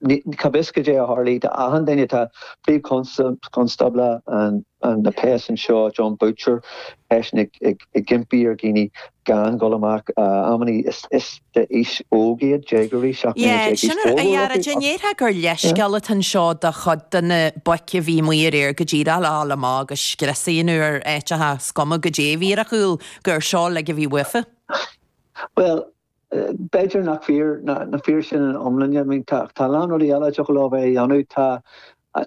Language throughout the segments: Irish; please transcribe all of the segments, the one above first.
Cá bhfios goidé a tharlaigh d'achan duine. Tá Príomh-Chonstábla na bpéas anseo, Jon Boutcher, eisean ag impí ar dhaoine gan dhul amach. Amannaí is d'aois óg iad, déagóirí, seacht mbliana déag d'aois, go leor acu. An ndéarfá gur leithscéal atá anseo do chuid de na boic a bhí amuigh aréir go dtig leo a dhul amach agus scrios a dhéanamh ar áiteacha is cuma goidé a bhí ar a chúl, gur seo uilig a bhí uafa? Bhuel, B'fhéidir nach fíor nach fíor sin ina iomláine. I mean tá a lán rudaí eile a dtiocfadh leo a bheith a dhéanamh. Tá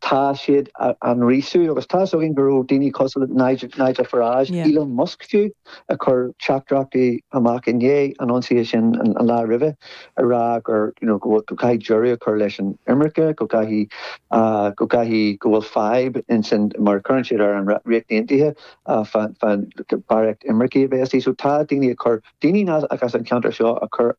tá siad á á ngríosú agus tá's againn go raibh daoine cosúil Nigel Nigel Farage, Yeah. Elon Musk fiú ag cur teachtaireachtaí amach i ndiaidh an ionsaithe sin an an lá roimhe ag rá gur you know go bhfuil go gcaithfidh deireadh a chur leis an imirce, go gcaithfidh ah go gcaithfidh go bhfuil fadhb ins an mar a chuireann siad air an Rí Ríocht Aontaithe ah fán fán barraíocht imircigh a bheith istigh. So tá daoine ag cur Daoine nach as an ceantar seo ag cur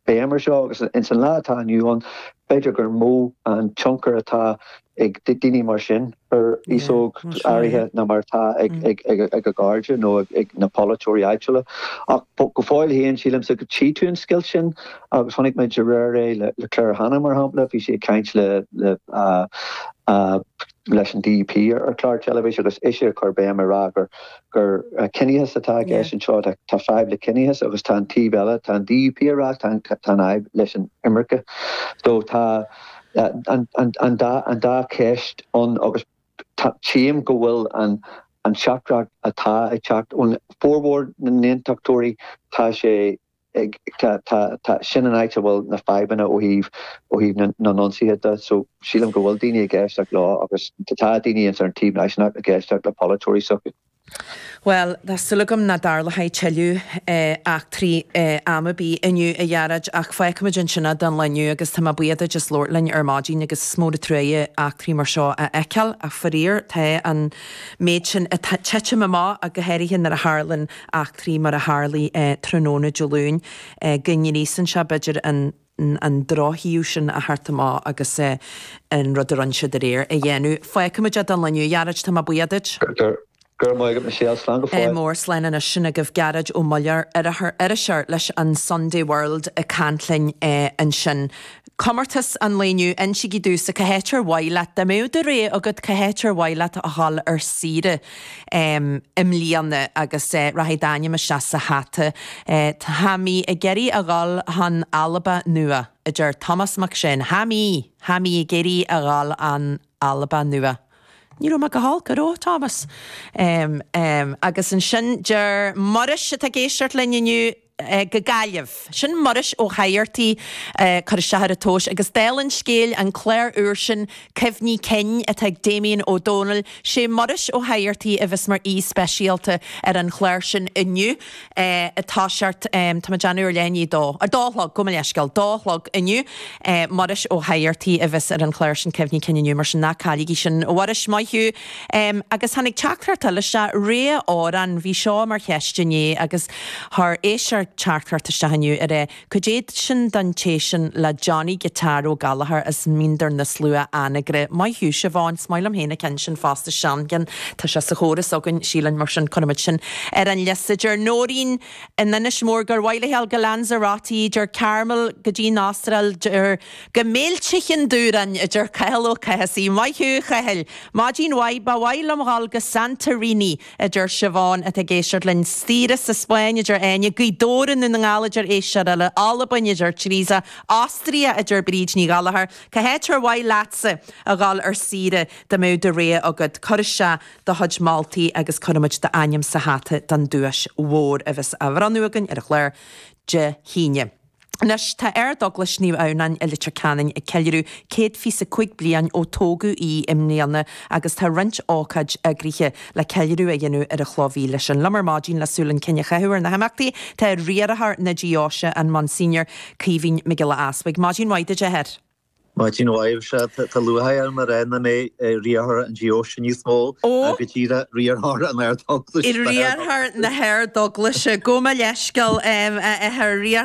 béim ar seo agus ins an lá atá inniu ann b'fhéidir gur mó an tionchar atá ag daoine mar sin ar aos óg áirithe ná mar atá ag a gcairde nó ag na polaiteoirí áitiúla. Ach go fóill féin sílimse go tchí tú an scoilt sin agus chonaic muid aréir é le Claire Hanna mar shampla, bhí sí ag caint le leis an DUP ar chlár teilifís agus ise ag cur béim ag rá gur gur ciníochas atá i gceist anseo. Tá fadhb le ciníochas agus tá an taobh eile, tá an DUP ag rá tá an fhadhb leis an imirce. So tá an dá an dá cheist ann agus tchím go bhfuil an an teachtaireacht atá ag teacht ón, formhór na nAontachtóirí, tá sé, Sin an áit a bhfuil na fadhbanna ó thaobh na n-ionsaithe de. So, sílim go bhfuil daoine ag éisteacht leo agus tá daoine ins ar an taobh náisiúnach ag éisteacht le polaiteoirí s'acu. Bhuel, tá súil agam nach dtarlóidh tuilleadh eachtraí am ar bith inniu, a Ghearóid, ach fágfaimid ansin é don lá inniu agus tá mé buíoch duit as labhairt linn ar maidin agus is mór an truaighe eachtraí mar seo a fheiceáil ach faraor tá an méid sin ag titim amach ach go háirithe nuair a tharlann eachtraí mar a tharlaigh tráthnóna Dé Luain go ngríosann sé b'fhéidir an drochthaobh sin a thabhairt amach agus an rud a rinne siad aréir a dhéanamh. Fágfaimid é don lá inniu, a Ghearóid, tá mé buíoch duit. Go raibh maith agat Michelle, slán go fóill. Mór, Slán anois sin agaibh Gearóid Ó Muilleoir, iriseoir leis an Sunday World ag caint linn ansin. Comórtas an lae inniu, Insigí domhsa cá háit ar mhaith leat dá mbeadh do rogha agat, cá háit ar mhaith leat a dhul ar saoire i mbliana agus rachaidh d'ainm isteach sa hata. Tha mi ag iarraidh a dhul chun Alba Nua, a deir Tomás Mac Seáin. Tha mi! Tha mi ag iarraidh a dhul chun Alba Nua. Ní raibh mé go holc, an raibh, a Thomáis. Agus ansin deir Muiris, atá ag éisteacht linn inniu. go Gaillimh. Sin Muiris Ó Fathartaigh cur isteach ar an tomhas agus dála an scéil, an clár úr sin Cuimhní Cinn atá ag Damien Ó Dónaill, sé Muiris Ó Fathartaigh a bheas mar aoi speisialta ar an chlár sin inniu atá sé air, tá mé ag déanamh ar leath i ndiaidh a dó, a dó a chlog, gabh mo leithscéal, dó a chlog inniu, Muiris Ó Fathartaigh a bheas ar an chlár sin Cuimhní Cinn inniu mar sin ná cailligí sin. A Mhuiris, maith thú. Agus tháinig teachtaireacht eile isteach, rogha amhrán, bhí seo mar cheist inné agus chuir éisteoir teachtaireacht isteach inniu ar é, Caidé sin don té sin le Johnny Guitar Ó Gallchóir as Mín Doire na Slua, Anagaire. Maith thú, Siobhán. Is maith liom féin an ceann sin fosta, Seangán. Tá sé sa chóras againn, sílim, mar sin cuirimid sin ar an liosta. Deir Nóirín in Inis Mór gur mhaith léithi a dhul go Lanzarote, deir Carmel go dtí an Astráil, deir. Go meilte Chinn Dúráin a deir Cathal Ó Cathasaigh, maith thú a Chathail! Maidin mhaith, ba mhaith liom dhul go Santorini a deir Siobhán atá ag éisteacht linn, saoire sa Spáinn a deir Áine, Gaoth Dobhair i nDún na nGall a deir éisteoir eile, Albain a deir Teresa, Austria a deir Bríd Ní Ghallchóir. Cá háit ar mhaith leatsa a dhul ar saoire dá mbeadh do rogha agat? Cuir isteach do chuid moltaí agus cuirfimid d'ainm sa hata don duais mhór a bheas á bhronnadh againn ar an chlár Dé hAoine. Anois tá Ardeaglais Naomh Adhamhnáin i Leitir Ceanainn ag ceiliúradh 125 bliain ó tógadh í i mbliana agus tá roinnt ócáidí eagraithe le ceiliúradh a dhéanamh ar an chloch mhíle sin. Liom ar maidin le súil chun cinn a chaitheamh ar na himeachtaí tá Riarthóir na Deoise an Monsignor Caoimhín Mac Giolla Easpaig. Maidin mhaith duit a Athair. Maidin mhaith sé. Tá lúcháir orm a rá nach mé Riarthóir na Deoise níos mó ach go díreach Riarthóir an Ardeaglais. Riarthóir na hArdeaglaise. Gabh mo leithscéal a Athair, Riarthóir.